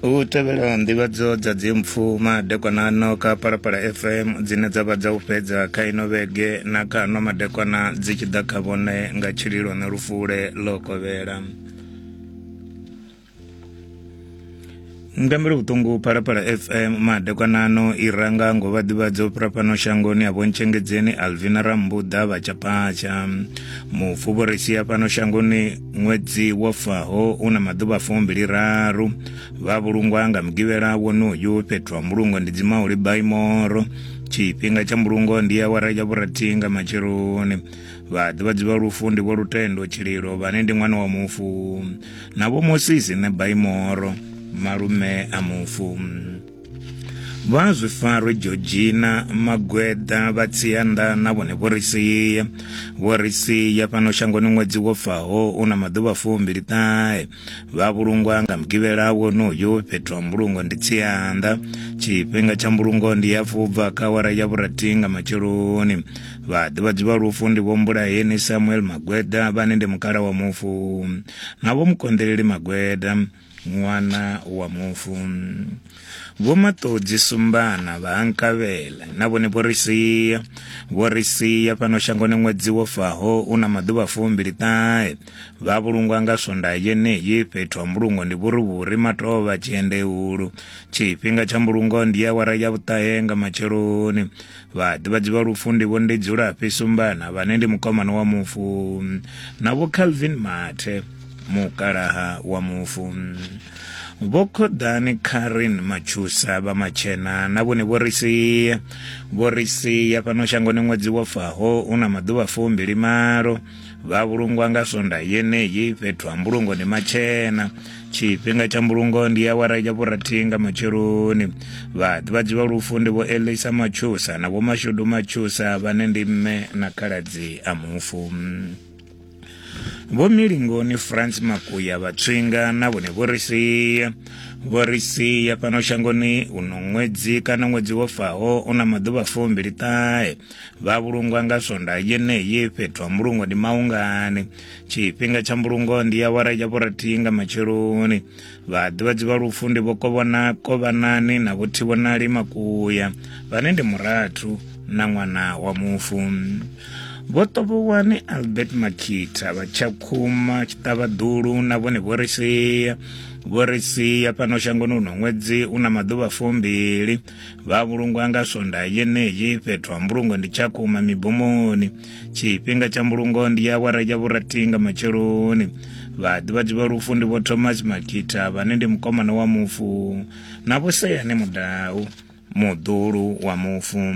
u tevhela nḓivhadzo dza dzimpfu madekwanano kha palapala fm dzine dza vha dza u fhedza kha ino vhege na kha ano madekwana dzi tshi ḓa kha vhone nga tshililo na lufule ḽo kovhela mutambeli vhuṱungu phalaphala fm madekwanano i ranga ngo vha ḓivhadza u fhira fhano shangoni a vhontshengedzeni alvina rambuḓa vhatshapatsha mufu vho ri sia fhano shangoni ṅwedzi wo faho u na maḓuvha fumbili raru vha vhulungwa nga mugivhela wonoyu fhethu ha mbulungo ndi dzimauli baimoro tshifhinga tsha mbulungo ndi awara ya vhurathi nga matsheloni vhaḓivhadzi vha lufu ndi vho lutendo tshililo vhane ndi ṅwana wa mufu na vho mosisi ne baimoro malume a mufu vha zwi farwe georgina magweda vha tsianda na vhone vho ri sia vho ri sia fhano shangoni ṅwedzi wo faho u na maḓuvha fumbili ṱahe vha vhulungwa nga mugivhela wonoyo fhethu ha mbulungo ndi tsianda tshifhinga tsha mbulungo ndi ya fubva kha wara ya vhurathi nga matsheloni vhaḓivhadzi vha lufu ndi vho mbulaheni samuel magweda vhane ndi mukala wa mufu na vho mukonḓeleli magweda ṅwana wa mufu vho maṱodzi sumbana vha nkavhela na vhone vho ri sia vho ri sia fhano shangoni ṅwedzi wo faho u na maḓuvha fumbili ṱahe vha vhulungwa nga swonda yeneyi fhethu ha mbulungo ndi vhurivhuri matovha tshiendehulu tshifhinga tsha mbulungo ndi awara ya vhuṱahe nga matsheloni Vhaḓivhadzi vha lufu ndi vho ndi Dzulafhi Sumbana vhane ndi mukomana wa mufu na vho Calvin Mathe mukalaha wa mufu. Vho Khoḓani Karen Matshusa vha Matshena na vhone vho ri sia vho ri sia fhano shangoni ṅwedzi wo faho una maḓuvha fumbili malo vha vhulungwa nga sonda yeneyi fhethu ha mbulungo ndi matshena tshifhinga tsha mbulungo ndi awara ya vhurathi nga matsheloni vhaḓivhadzi vha lufu ndi vho elisa matshusa na vhomashudu matshusa vhane ndi mme na khaladzi a mufu vho milingoni france makuya vhatswinga na vhone vho ri sia vho ri sia fhano shangoni uno ṅwedzi kana ṅwedzi wo faho u na maḓuvha fumbili ṱahe vha vhulungwa nga swonda yeneyi fhethu ha mbulungo ndi maungani tshifhinga tsha mbulungo ndi ya wara ya vhorathihi nga matsheloni vhaḓivhadzi vha lufu ndi vho kovhona kovhanani na vho thivhonali makuya vhane ndi murathu na ṅwana wa mufu vho tovhowani albert makhitha vha tshakhuma tshiṱavhaḓulu na vhone vho ri sia vho ri sia fhano shangoni uno ṅwedzi u na maḓuvha fumbili vha vhulungwa nga swondaha yeneyi fhethu ha mbulungo ndi tshakhuma mibomoni tshifhinga tsha mbulungo ndi ya awara ya vhurathi nga matsheloni vhaḓivhadzi vha lufu ndi vho thomas makita vhane ndi mukomana wa mufu na vho seyane mudau muḓulu wa mufu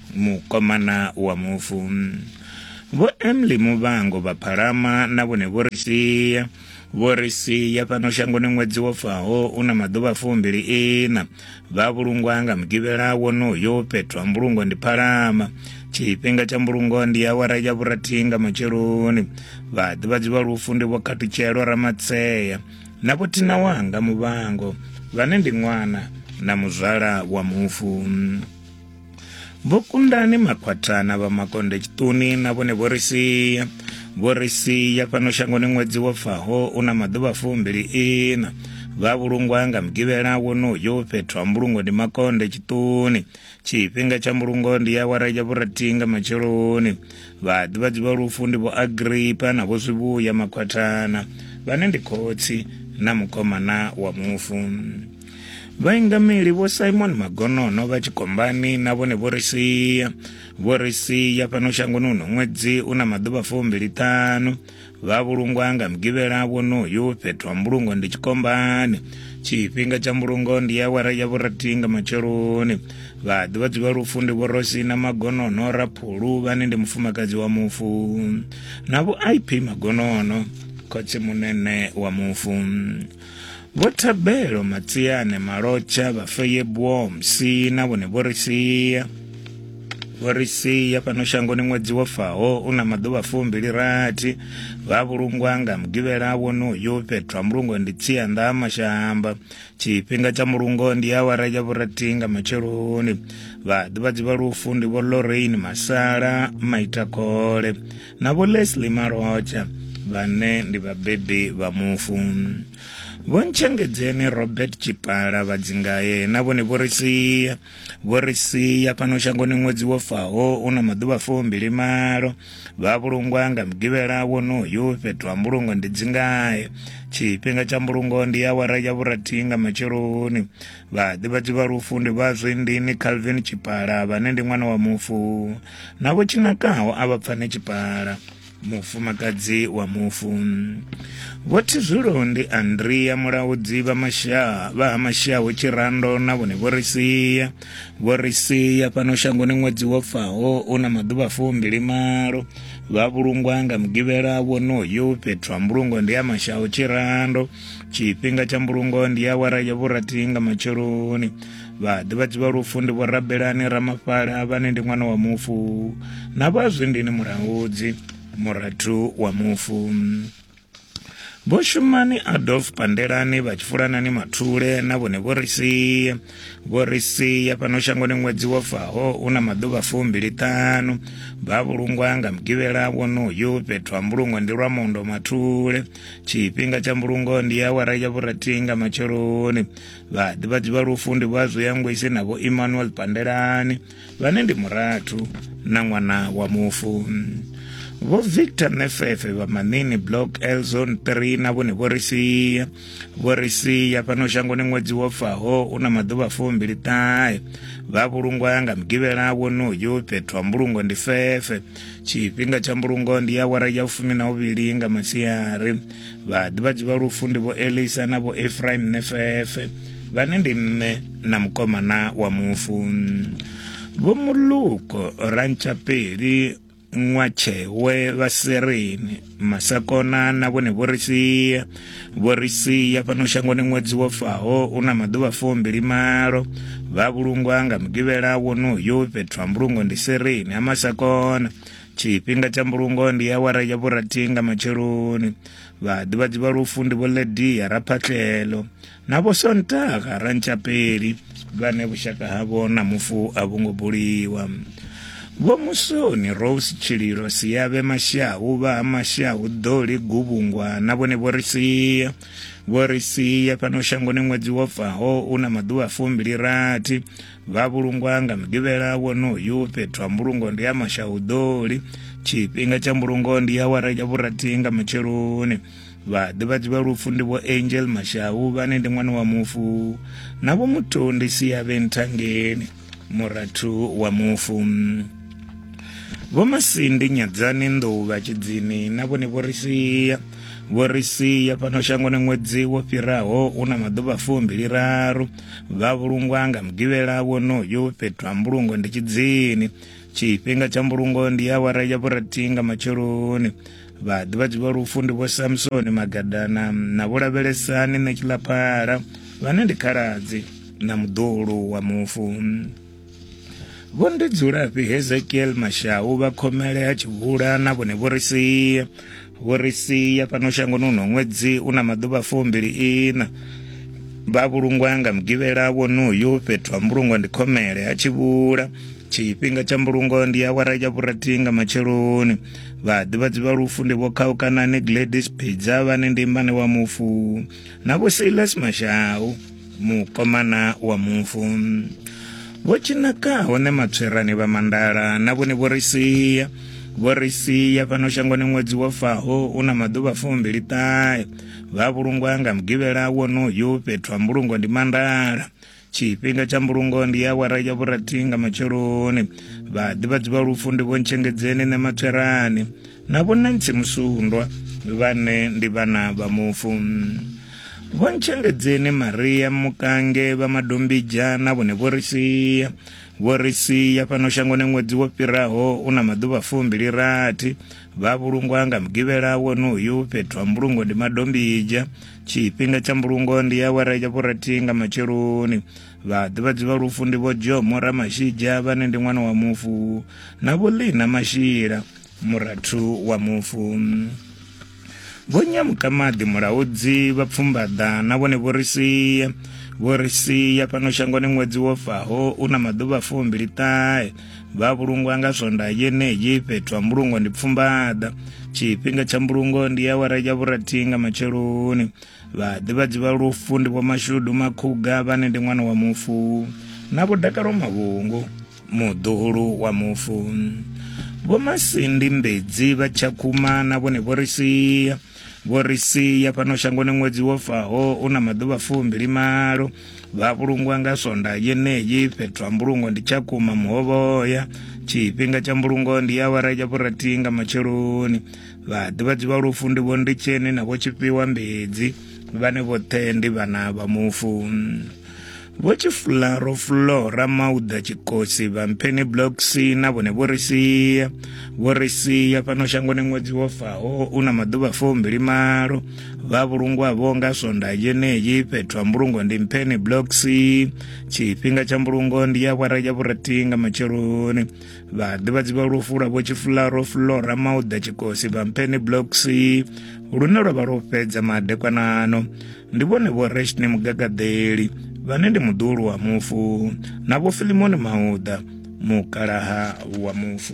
mukomana wa mufu vho emily muvhango vha phalama na vhone vho ri sia vho ri sia fhano shangoni ṅwedzi wo faho u na maḓuvha fumbili ina vha vhulungwa nga mugivhela wonoyo fhethu ha mbulungo ndi phalama tshifhinga tsha mbulungo ndi awara ya vhurathi nga matsheloni vhaḓivhadzi vha lufu ndi vho khatutshelo ramatseya na vho thina wanga muvhango vhane ndi ṅwana na muzwala wa mufu vho kundani makhwathana vha makonde tshiṱuni na vhone vho ri sia vho ri sia fhano shangoni ṅwedzi wo faho u na maḓuvha fumbili ina vha vhulungwa nga mugivhela wonoyo fhethu ha mbulungo ndi makonde tshiṱuni tshifhinga tsha mbulungo ndi ya wara ya vhurathi nga matsheloni vhaḓivhadzi vha lufu ndi vho agripa na vho zwivhuya makhwathana vhane ndi khotsi na mukomana wa mufu vhaingameli vho simon magonono vha tshikombani na vhone vho ri sia vho ri sia fhano shangoni uno ṅwedzi u na maḓuvha fumbili ṱhanu vha vhulungwa nga mugivhela wonoyu fhethu ha mbulungo ndi tshikombani tshifhinga tsha mbulungo ndi ya wara ya vhurathi nga matsheloni vha ḓivha dzivha lufu ndi vhorosi na magonono raphulu vhane ndi mufumakadzi wa mufu na vho ip magonono khotsi munene wa mufu Vho Thabelo Matsiane Malotsha vha Feyebwo Msi na vhone vho ri sia vho ri sia fhano shangoni ṅwedzi wo faho u na maḓuvha fumbili rathi vha vhulungwa nga mugivhela wonoyu fhethu ha mulungo ndi tsianḓa ha mashamba tshifhinga tsha mulungo ndi awara ya vhurathi nga matsheloni vhaḓivhadzi vha lufu ndi vho lorraine masala maitakhole na Vho Leslie Malhotsha vhane ndi vhabebi vha mufu vho ntshengedzeni robert tshipala vhadzingaye na vhone vho ri sia vho ri sia fhano shangoni ṅwedzi wo faho u na maḓuvha fumbili malo vha vhulungwa nga mugivhela wonoyu fhethu ha mbulungo ndi dzingaye tshifhinga tsha mbulungo ndi awara ya vhurathi nga matsheloni vhaḓivhadzi vha lufu ndi vha zwindini calvin tshipala vhane ndi ṅwana wa mufu na vho tshinakaho a vha pfane tshipala mufumakadzi wa mufu vho thizwilo ndi andria mulaudzi vha mashaa vha ha mashaho tshirando na vhone vho ri sia vho ri sia fhano shangoni ṅwedzi wo faho u na maḓuvha fumbili malo vha vhulungwa nga mugivhela wonoyo fhethu ha mbulungo ndi ya mashaho tshirando tshifhinga tsha mbulungo ndi ya wara ya vhurathi nga matsheloni vhaḓivhadzi vha lufu ndi vhorabelani ramafhala vhane ndi ṅwana wa mufu na vhazwindini murangudzi murathu wa mufu vho shumani adolf pandelani vha tshifulanani mathule na vhone vho ri sia vho ri sia fhano shangoni ṅwedzi wo faho u na maḓuvha fumbiliṱanu vha vhulungwa nga mugivhela wonoyu fhethu ha mbulungo ndi lwa mondo mathule tshifhinga tsha mbulungo ndi awara ya vhurathi nga matsheloni vhaḓivhadzi vha lufu ndi vha zwiyangwisi na vho emmanuel pandelani vhane ndi murathu na ṅwana wa mufu vho victor nefefe vha manini block l zone 3 na vhone vho ri sia vho ri sia fhano shangoni ṅwedzi wo faho u na maḓuvha fumbili ṱahe vha vhulungwa nga mugivhela wonoyu fhethu ha mbulungo ndi fefe tshifhinga tsha mbulungo ndi ya wara ya fumi na uvhili nga masiari vhaḓivhadzi vha lufu ndi vho elisa na vho efraim nefefe vhane ndi mme na mukomana wa mufu vho muluko rantshapeli ṅwatshewe vha sereni masakona na vhone vho ri sia vho ri sia fhano shangoni ṅwedzi wo faho u na maḓuvha fumbili malo vha vhulungwa nga mugivhela wonoyo fhethu ha mbulungo ndi sereni ha masakona tshifhinga tsha mbulungo ndi awara ya vhurathi nga matsheloni vhaḓivhadzi vha lufu ndi vho ledia raphatlelo na vho sontaga rantshapeli vhane vhushaka havho na mufu a vho ngo buliwa vho musoni rose tshililo siyavhe mashau vha ha mashau ḓoli guvhungwa na vhone vho ri sia vho ri sia fhano shangoni ṅwedzi wo faho u na maḓuvha fumbili rathi vha vhulungwa nga mugivhela wonoyu fhethu ha mbulungo ndi ya mashauḓoli tshifhinga tsha mbulungo ndi ya wara ya vhurathi nga matsheloni vhaḓivhadzi vha lufu ndi vho angel mashau vhane ndi ṅwana wa mufu na vho muthu ndi siyavhe nthangeni murathu wa mufu vho masindi nyadzani nḓou vha tshidzini na vhone vho ri sia vho ri sia fhano shangoni ṅwedzi wo fhiraho u na maḓuvha fumbiliraru vha vhulungwa nga mugivhela wonoyu fhethu ha mbulungo ndi tshidzini tshifhinga tsha mbulungo ndi awara ya vhurathi nga matsheloni vhaḓivhadzi vha lufu ndi vho samsoni magadana na vho lavhelesani ṋetshilaphala vhane ndi khaladzi na muḓulu wa mufu Vho ndi dzulafhi Hezekiel Mashau vha khomele ha tshivhula na vhone vho ri sia vho ri sia fhano shangoni uno ṅwedzi u na maḓuvha fumbili ina vha vhulungwa nga mugivhela wonoyu fhethu ha mbulungo ndi khomele ha tshivhula tshifhinga tsha mbulungo ndi awara ya vhurathi nga matsheloni vhaḓivhadzi vha lufu ndi vho khaukanani gladys pidza vhane ndi mmane wa mufu na vho silas mashau mukomana wa mufu vho tshinaka hone matswerani vha mandala na vhone vho ri sia vho ri sia fhano shangoni ṅwedzi wo faho u na maḓuvha fumbili ṱahe vha vhulungwa nga mugivhela wonoyu fhethu ha mbulungo ndi mandala tshifhinga tsha mbulungo ndi ya wara ya vhurathi nga matsheloni vhaḓivhadzi vha lufu ndi vho ntshengedzeni nṋe matswerani Na vhonantsi musundwa vhane ndi vhana vha mufu. Vho ntshengedzeni Maria Mukange vha Madombija na vhone vho ri sia. Vho ri sia fhano shangoni ṅwedzi wo fhiraho u na maḓuvha fumbili rathi. Vha vhulungwa nga mugivhela wonoyu fhethu ha mbulungo ndi Madombija. Tshifhinga tsha mbulungo ndi awara ya vhurathi nga matsheloni. Vha ḓivhadzi vha lufu ndi vho Jomo Ramashija vhane ndi ṅwana wa mufu na vho Lina Mashila. Murathu wa mufu Vho Nyamukamaḓi Mulaudzi vha pfumbaḓa na vhone vho ri sia vho ri sia fhano shangoni ṅwedzi wo faho u na maḓuvha fumbili ṱahe vha vhulungwa nga swonda yeneyi fhethu ha mbulungo ndi pfumbaḓa tshifhinga tsha mbulungo ndi awara ya vhurathi nga matsheloni vhaḓivhadzi vha lufu ndi vho mashudu makhuga vhane ndi ṅwana wa mufu na vho dakalo mavhungu muḓuhulu wa mufu vho masindi mbedzi vha tshakhuma na vhone vho ri sia vho ri sia fhano shangoni ṅwedzi wo faho u na maḓuvha fumbili malo vha vhulungwa nga sonda yeneyi fhethu ha mbulungo ndi tshakhuma muhovhoya tshifhinga tsha mbulungo ndi awara ya vhurathi nga matsheloni vhaḓivhadzi vha lufu ndi vho nditsheni na vho tshifhiwa mbedzi vhane vhoṱhe ndi vhana vha mufu vho tshifularo fulora mauda tshikosi vha mpheni blocks na vhone vho ri sia vho ri sia fhano shangoni ṅwedzi wo faho u na maḓuvha fumbili malo vha vhulungwavho nga swonda yeneyi fhethu ha mbulungo ndi mpheni blocks tshifhinga tsha mbulungo ndi ya awara ya vhurathi nga matsheloni vha ḓivhadzi vha lufula vho tshifularo flora mauda tshikosi vha mphene blocks lune lwa vha lwo fhedza madekwanano ndi vhone vho reshne mugagaḓeli vhane ndi muḓulu wa mufu na vho filimoni mauda mukalaha wa mufu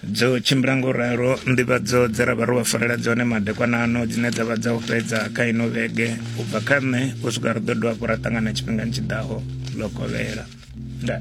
dzo tshimbila ngo ralo nḓivhadzo dze ra vha ro vha farela dzone madekwanano dzine dza vha dza u fhedza kha ino vhege u bva kha nṋe u swika ri ḓo dovha hafhu ra ṱangana tshifhingani tshi ḓaho ḽo kovhela ndaa